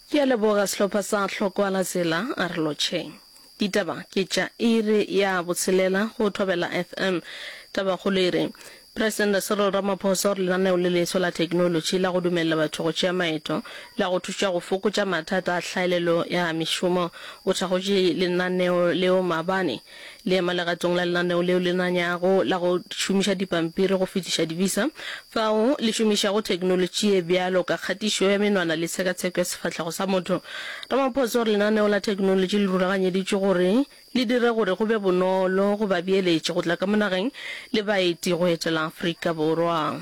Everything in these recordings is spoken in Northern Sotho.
Ke a leboga sehlopha sa Hlokoala Zela a re lotšheng. Ditaba ke tša iri ya botshelela go Thobela FM. Tabakgolo e re, Presidente Cyril Ramaphosa o re lenaneo le leswa la theknolotši la go dumelela batho go tšea maeto la go thuša go fokotša mathata a hlaelelo ya mešomo. O thakgotše lenaneo leo maabane. Le ema legatong la lenaneo leo le nanyago la go šomiša dipampiri go fetiša di-visa, fao le šomišago theknolotši ye bjalo ka kgatišo ya menwana le tshekatsheko ya sefahlego sa motho. Ramaphosa o re lenaneo la theknolotši le rulaganyeditšwe gore le dire gore go be bonolo go babeeletši go tla ka mo nageng le baeti go etela Afrika Borwa.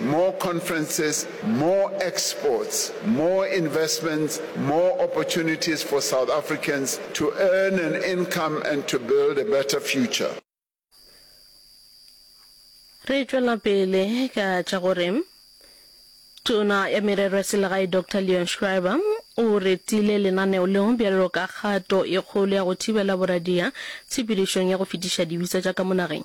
More conferences, more exports, more investments, more opportunities for South Africans to earn an income and to build a better future. Re tšwela pele ka tša gore Tona ya Merero ya Selegae Doctor Leon Schreiber o retile lenaneo leo bjalo ka kgato e kgolo ya go thibela boradia tshepedišong ya go fetiša dibisa tša ka mo nageng.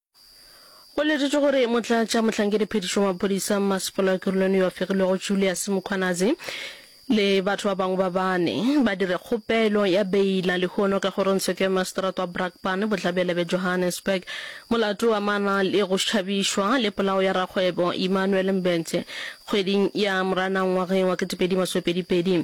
Go letetšwe gore motlatša mohlankediphetiši wa maphodisa mmasepala wa Kirolone yo a fegilwego Julius Mkhwanazi le batho ba bangwe ba bane ba dire kgopelo ya beila lehono ka kgorongtsheko ya maseterata wa Brakpan bohlabela bja Johannesburg molato o amana le go šhabišwa le polao ya rakgwebo Emmanuel Mbete kgweding ya Moranang ngwageng wa 2022.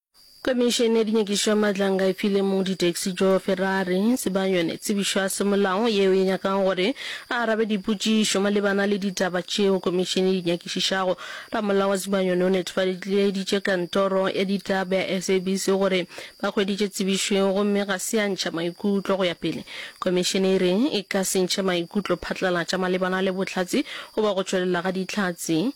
Komišene ya dinyakišo maatlang ga e fi le mong ditaxi Joe Ferrari sebang yone tsebišo ya semolao yeo e nyakago gore a arabe dipotšišo malebana le ditaba tšeo komišene e di nyakišišago. Ramolao wa sebang yone o netefaleditše kantoro ya ditaba ya SABC gore ba hweditše tsebišo yeo gomme ga se ya ntšha maikutlo go ya pele. Komišene e re e ka se ntšhe maikutlo phatlalatša malebana le bohlatse goba go tšwelela ga dihlatse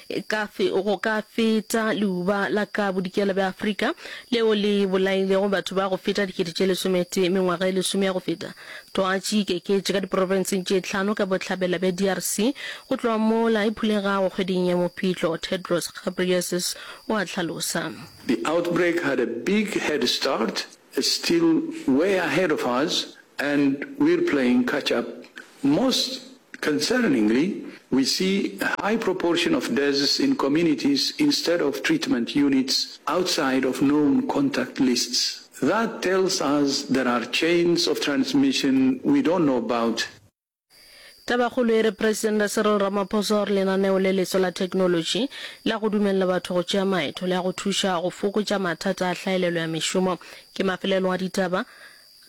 Ka fe, go ka feta leuba la ka bodikela bja Afrika leo le bolailego batho ba go feta dikete tše lesometee mengwaga e lesome ya go feta, twatši e ikeketše ka diprofenseng tše tlhano ka bohlabela bja DRC go tloga mola e phulegago kgweding ya Mopitlo, Tedros Ghebreyesus o a hlalosa. The outbreak had a big head start, it's still way ahead of us and we're playing catch up. Most Concerningly, we see a high proportion of deaths in communities instead of treatment units outside of known contact lists. That tells us there are chains of transmission we don't know about. Tabakgolo e re Presidente Cyril Ramaphosa o re lenaneo le leswa la technology la go dumelela batho go tšea maeto le ya go thuša go fokotša mathata a hlaelelo ya mešomo ke mafelelong a ditaba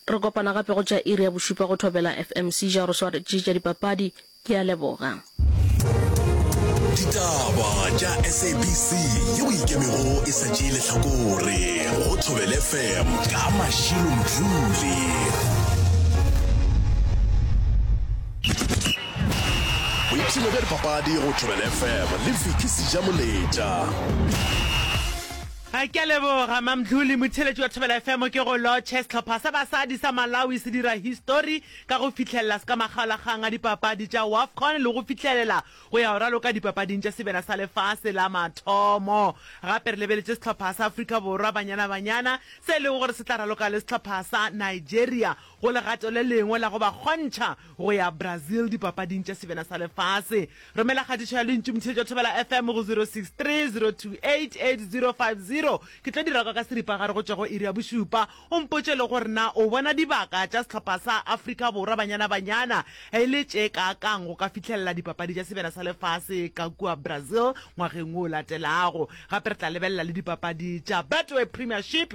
Re kopana gape go tša iri ya bošupa go Thobela FM Seizure go swaretše tša dipapadi. Ke a leboga. Ditaba tša SABC yeo e ikemego e sa tšee lehlakore go Thobela FM ka Mashilo Mdluli. Boipshino bja dipapadi go Thobela FM le Vicky Sejamoletša. A ke a leboga Mamdluli, motheeletši wa Thobela FM. Ke go lotšhe, sehlopha sa basadi sa Malawi se dira histori ka go fihlelela se ka makgaolakgang a dipapadi tša Wafcon le go fihlelela go ya go raloka dipapading tša sebjana sa lefase la mathomo. Gape re lebeletše sehlopha sa Afrika Borwa Banyana Banyana se e lego gore se tla raloka le sehlopha sa Nigeria Go legato le lengwe la go ba kgontšha go ya Brazil Dipapading tša Sebena sa Lefase, romela kgatišo ya lentšu Mtheetšo Thobela FM go 0630288050. Ke tlo dira kwa ka seripagare go tšwa go iri ya bošupa. O mpotše le gore na o bona dibaka tša sehlopha sa Afrika Borwa Banyana Banyana e le tše kaakang go ka fihlelela Dipapadi tša Sebena sa Lefase ka kua Brazil ngwageng wo o latelago. Gape re tla lebelela le dipapadi tša Betway Premiership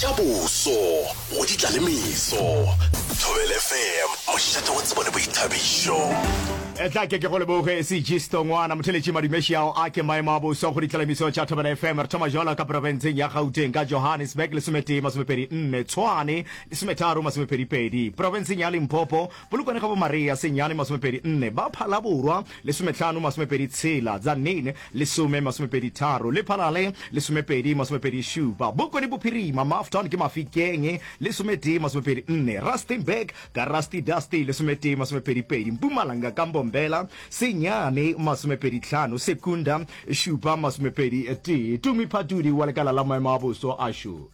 Ja boso, go ditla le meso. Thobela FM, mošate wa tsebo le boithabišo. Etla ke ke go leboge Segisto Ngwana motheletši madumeši ao a ke maemo a boso go ditla le meso tša Thobela FM. Re thoma joalo ka profenseng ya Gauteng ka Johannesburg lesometee masomepedi nne, Tshwane lesometharo masomepedi pedi, profenseng ya Limpopo Polokwane ga bo Maria senyane masomepedi nne, ba Phalaborwa lesometlhano masomepedi tshela, Tzaneen lesome masomepedi tharo, le Phalale lesomepedi masomepedi šupa. Bokone Bophirima, Mafton ke Mafikeng lesometee masomepedi nne, Rustenburg ka Rusty Dusty lesometee masomepedi pedi, Mpumalanga ka Mbombela senyane masomepedi tlhano, Secunda šupa masomepedi tee. Tumi Phatudi wa lekala la maemo a boso a xo.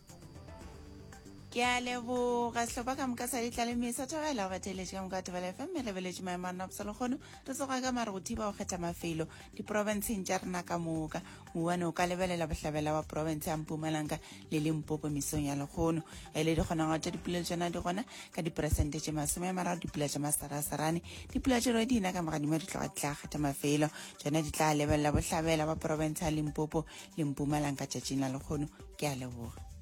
Ke a leboga sehlopha ka moka sa ditlaleme sa thobela o gateletše ka moka thobela fm re beletše maemo a nopsa lekgono re tsoga ka mare go thiba go kgetha mafelo diporofenseng tša rena ka moka mowane o ka lebelela bohlabela wa porofense ya mpumalanga le limpopo mesong ya lekgono ge e le dikgonagalo tša dipulelo tšona di gona ka diperesente tše masome a mararo dipula tša masarasarane dipula tše re dina ka mogadimo di tloga di tla kgetha mafelo tšona di tla lebelela bohlabela wa porofense ya limpopo le mpumalanga tšatšing la lekgono ke a leboga